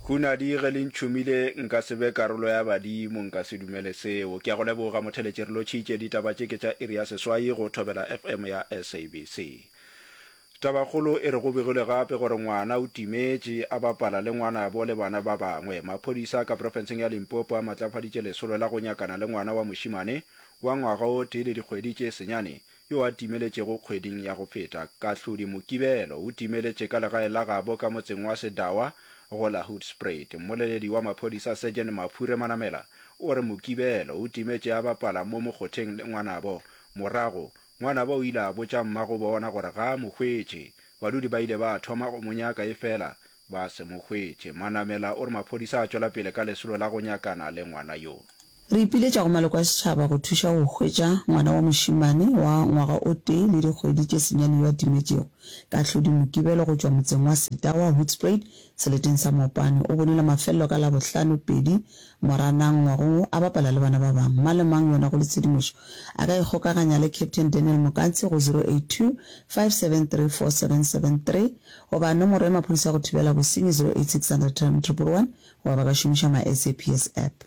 Hunadi, ge le ntšhomile, nka se be karolo ya badimo, nka se dumele seo. Ke a go leboga, motheletši, re lotšhitše. Ditaba tše ke tša iri ya seswai go Thobela FM ya SABC. Tabakgolo e re go begilwe gape gore ngwana o timetše, a bapala le ngwanabo le bana ba bangwe. Maphodisa ka profenseng ya Limpopo a matlafaditše lesolo la go nyakana le ngwana wa mošimane wa ngwaga o tee le dikgwedi tše senyane yo a timeletšego kgweding ya go feta, Kahlodi Mokibelo o timeletše ka legae la gabo ka motseng wa Sedawa go la Hoedspruit. Mmoleledi wa maphodisa Sergeant Maphure Manamela o re Mokibelo o timetše a bapala mo mokgotheng le ngwanabo. Morago, ngwanabo o ile a botša mmagobona gore ga a mo hwetše. Badudi ba ile ba thoma go mo nyaka efela Ba se mo hwetše. Manamela o re maphodisa a tšwela pele ka lesolo la go nyakana le ngwana yo. Re ipiletša go maloko a setšhaba go thuša go hwetša ngwana wa mošemane wa ngwaga o tee le dikgwedi tše senyane yo a timetšego ka hlodi Mokibelo go tšwa motseng wa Setawa, Hoedspruit, seleteng sa Mopane. O bonile mafelelo ka Labohlano, pedi, Moranang ngwagong wo a bapala le bana ba bangwe. Mang le mang yona go le tshedimošo a ka ikgokaganya le Captain Daniel Mokantshi go 0825734773 Goba nomoro ya maphodisa ya go thibela bosenyi 0860033311 goba ba ka šomiša MySAPS App.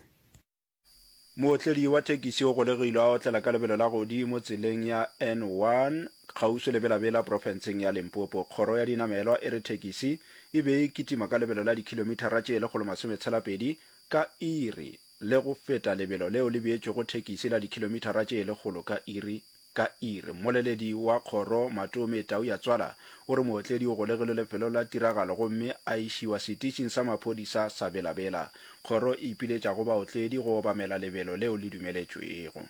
Mootledi wa thekisi o golegilwe a otlela ka lebelo la godimo tseleng ya N1 kgauswi le Bela-Bela profenseng ya Limpopo. Kgoro ya dinamelwa e re thekisi e be e kitima ka lebelo la dikhilomithara tše lekgolo masome tshela pedi ka iri le go feta lebelo leo le beetšwego thekisi la dikhilomithara tše lekgolo ka iri. Ka ir, mmoleledi wa kgoro Matome Tauyatswala o re mootledi o golegilwe lefelong la tiragalo gomme a išiwa setitšing sa maphodisa sa Bela Bela. Kgoro e ipiletša go baotledi go obamela lebelo leo le dumeletšwego.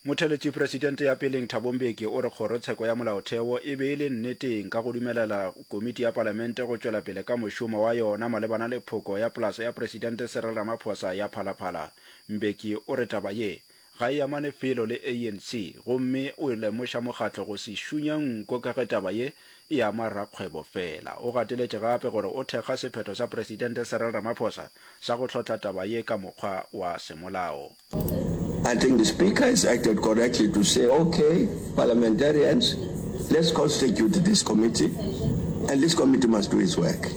Motheletši presidente ya peleng Thabo Mbeki o re kgorotsheko ya molaotheo e be e le nneteng ka go dumelela komiti ya palamente go tšwela pele ka mošomo wa yona malebana le phoko ya polase ya presidente Cyril Ramaphosa ya Phalaphala. Mbeki o re taba ye Ga e amane felo le ANC gomme o e lemoša mokgatlo go se šunye nko ka ge taba ye e ama rakgwebo fela. O gateletše gape gore o thekga sephetho sa Presidente Cyril Ramaphosa sa go hlotla taba ye ka mokgwa wa semolao. I think the Speaker has acted correctly to say, ok, Parliamentarians, let's constitute this committee and this committee must do its work.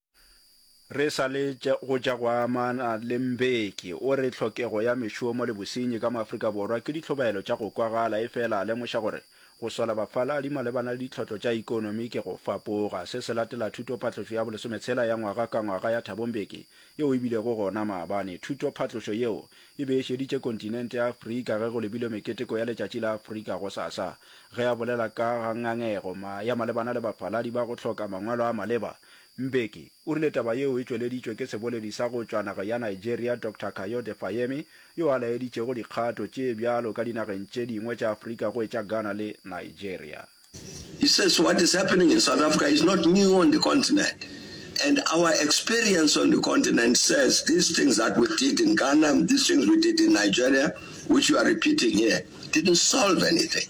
Re sa le go tša go amana le Mbeki, o re tlhokego ya mešomo le bosenyi ka mo Afrika Borwa ke ditlhobaelo tša go kwagala efela a lemoša gore go sola bafaladi malebana le ditlhotlo tša ikonomi ke go fapoga. Se se latela thutophatlošo ya bolesometshela ya ngwaga ka ngwaga ya Thabo Mbeki yeo e bilego gona maabane. Thutophatlošo yeo e be e šeditše kontinente ya Afrika ge go lebilwe meketeko ya Letšatši la Afrika gosasa ge a bolela ka ga ngangego ya malebana le bafaladi ba go hloka mangwalo a maleba Mbeki o rile taba yeo e tšweleditšwe ke seboledi sa go tšwa nageng ya Nigeria Doctor Kayode Fayemi yo a laeditšego dikgato tše bjalo ka dinageng tše dingwe tša Afrika go etša Ghana le Nigeria. He says what is happening in South Africa is not new on the continent and our experience on the continent says these things that we did in Ghana, these things we did in Nigeria which you are repeating here didn't solve anything.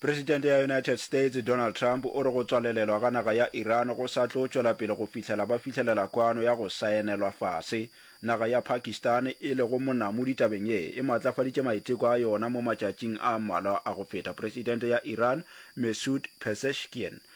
Presidente ya United States, Donald Trump, o re go tswalelelwa ga naga ya Iran go sa tlo tšwela pele go fihlela ba fihlelela kwano ya go saenelwa fase. Naga ya Pakistan, e lego monamodi tabeng ye, e maatlafaditše maiteko a yona mo matšatšing a mmalwa a go feta. Presidente ya Iran, Messoud Pezeshkian,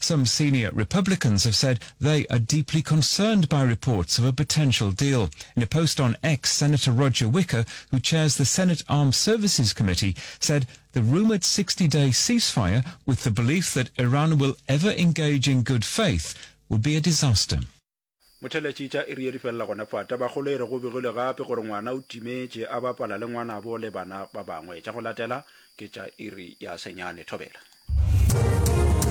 Some senior Republicans have said they are deeply concerned by reports of a potential deal. In a post on X, Senator Roger Wicker, who chairs the Senate Armed Services Committee, said the rumored 60-day ceasefire with the belief that Iran will ever engage in good faith would be a disaster. Motheletši tša iri ye di felela gona fa. Tabakgolo e re go begilwe gape gore ngwana o timetše a bapala le ngwanabo le bana ba bangwe. Tša go latela ke tša iri ya senyane. Thobela.